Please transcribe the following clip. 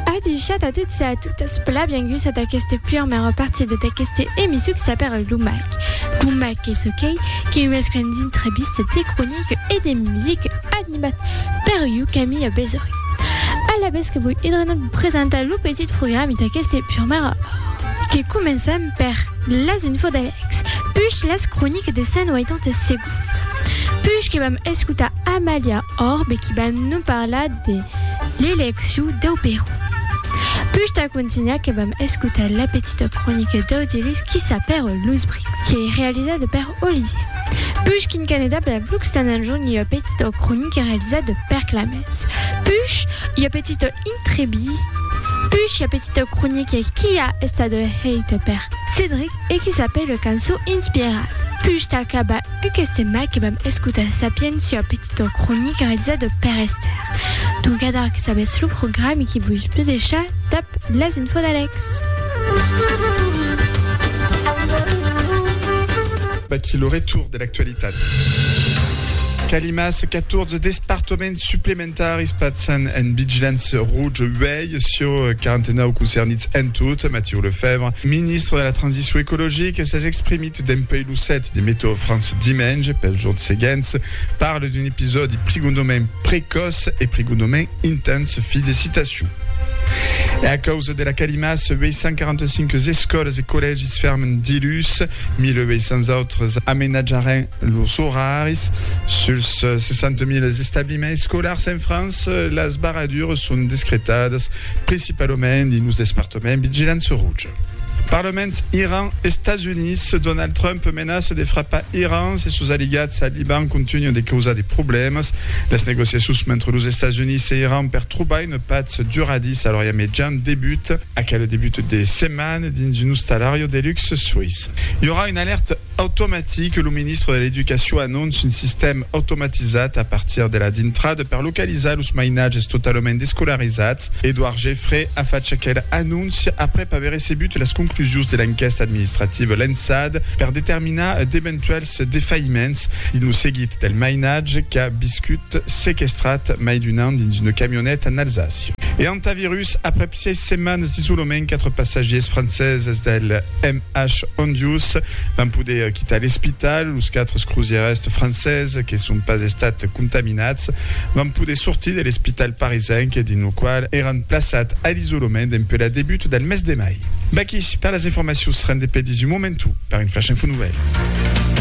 Adishat a tots e a totas, plan bienguts a d'aqueste puermèr repartida d'aqueste emission que s'apèra Lo Mac. Lo Mac qu'es aquei que mesclan d'intrevistes, de croniques e de musique, animat per iu, Camilha Besorin. Alavetz que voi edrenar vos presentar lo petit programi d'aqueste puermèr or, que començam per las infos d'Alex, puish las croniques de 180 segondes, puish que vam escotar Amalia, Or bequi ban non parlar de l'elecciu dau Perú. Push tà contunhar que vam escotar la petita cronica d'Audielus Quissa per los Brics, que ei realizada per Olivier. Push quin Canadà per Blux tan anjorn i ua petita cronica realizada per Clamens. Push ua petita intrevista. Push ua petita cronica qui a estada heita per Cedric e qui s'apèla Cançon inspirada. Push tà acabar Aqueste mac vam escotar Sapientia, petita cronica realizada per Esther. Trucadar que sabètz lo programi que vos pus deishar dab las info d'Alex. Vaquí lo retour de l'actualitat. Calimas, 14 despartoments suplementaris pasan en vigilància rouja uèi sur 49 concernits en tot. Matiu Lefèvre, ministre de la Transicion Ecologica, s'es exprimit. Dempuèi lo 7 de Meteo France dimenge pels jorns seguents, parle d'un episòdi prigondament precòç e prigondament intens. Fi de citacion. E a causa de la calima, 845 escòlas e collègis fèrmen diluns, 1.800 autres amenatjaràn lors oraris. Suls 60.000 establiments escolars en França, las barradures son descretadas principalament dins los despartaments vigilància rouja. Parlement Iran, Estats Units, Donald Trump menaça de frapar Iran se sos aliats al Liban contunhan de causar de problèmas. Las negociacions mentre los Estats Units e Iran per trobar una patz duradissa a l'Orient Mejan debuta aquel debut de setmana dins un ostalariu de luxe suís. I aurà una alèrta Automatic, lo ministre de l'Educacion anonce un sistèm automatizat a partir de la dintrada per localizar los mainatges totalament descolarizats. Edouard Geffray a fach aquela anóncia aprèp aver recebut las conclusions de l'enquèsta administrativa lançada per determinar d'eventuèls defaïments dins lo seguit del mainatge qu'a viscut sequestrat mai d'un an dins una camioneta en Alsàcia. E antavirus, aprèp Sièis setmanes d'isolament, quatre passatgiers franceses del MH Hondius van poder quitar l'espital. Los quatre crosièrs franceses que son pas estats contaminats van poder sortir de l'espital parisenc dins lo qual èran plaçats a l'isolament dempuèi la debut del mes de mai. Vaqui per las informacions rendent pels un momentu per un flash info nouvèl.